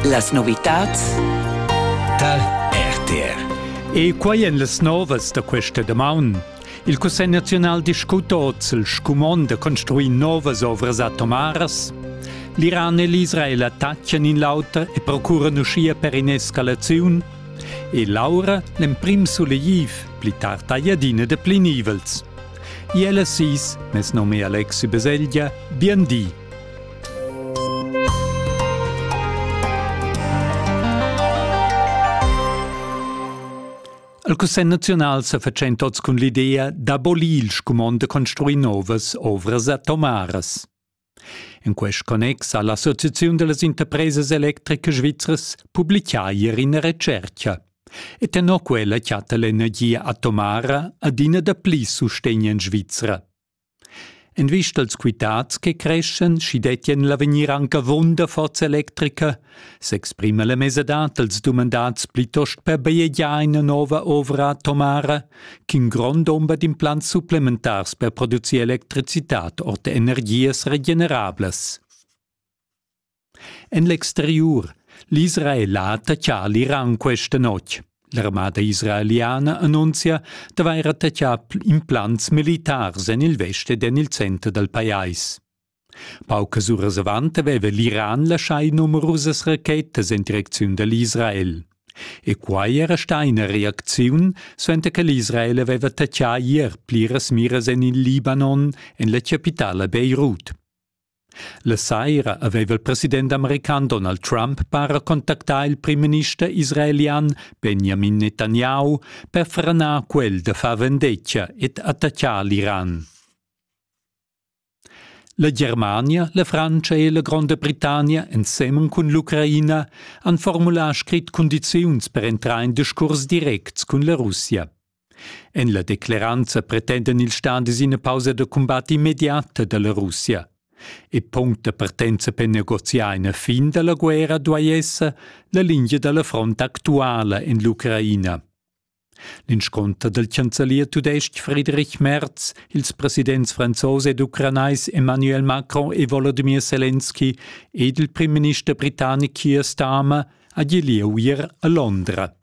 Las novitads tar RTR. E quai en las novas da questa damaun. Il Cussegl naziunal discuta oz il scumond da construir novas ovras atomaras. L'Iran e l'Israel attaccan in l'auter e procuran uschia per in'escalaziun. E Laura, l'emprim sulegliv, pli tard tagliadina da plinivels. Iela sis, mes nome Alexi Beselgia, bien di. El Cussegl naziunal sa fatschent oz cun l'idea d'abolir il scumond da construir novas ovras atomaras. In quest connex ha l'Associaziun delle interprese electriche svizras publicà ieri ina recerca. E tenor quella chatta l'energia atomara adina da pli sustegn en Svizra. En vista als quitads che creschan, schi dettien l'avegnir anc avunda forza electrica, s'exprima la mesadad dals dumandats plitost per bajegiar ina nova ovra atomara ch'in grond dumber d'implants supplementars per producir electricitad ord energias regenerablas. En l'exteriur l'Israela taccà l'Iran questa notg. L'armada israeliana annunzia d'avair attaccà implants militars en il vest ed en il center dal pajais. Paucas uras avant aveva l'Iran laschai numerusas rachetas en direcziun da l'Israel. E quai era stà ina reacziun, suenter che l'Israel aveva taccà ier pliras miras en il Libanon, en la chapitala Beirut. La saira aveva il president american Donald Trump para contactà il primminister israelian Benjamin Netanyahu per franar quel da far vendetga ed attaccar l'Iran. La Germania, la Frantscha e la Gronda Britannia ensemen cun l'Ucraina han formulà scrit cundiziuns per entrar in discurs directs cun la Russia. En la decleranza pretendan ils stadis ina pausa da cumbat immediata da la Russia. E punct da partenza per negoziar ina fin da la guerra duai esser la lingia da la front actuala en l'Ucraina. L'insconter del chancelier tudestg Friedrich Merz, ils presidents franzos ed ucranais Emmanuel Macron e Volodymyr Zelensky ed il premierminister britannic Keir Starmer ha gì lieu a Londra.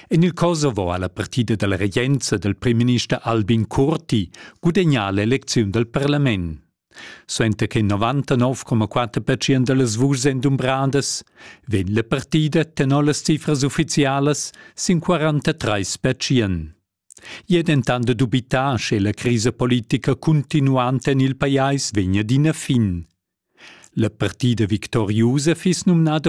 En il Kosovo ha la partida dalla regenza dal primminister Albin Kurti gudegnà l'elecziun dal parlament. Suenter che 99,4% da las vuschs èn dumbradas, vegn la partida tenor las cifras uffizialas sin 43%. I è dentant dubità, sche la crisa politica cuntinuanta en il pajais vegnia d'ina fin. La partida victoriusa fiss numnada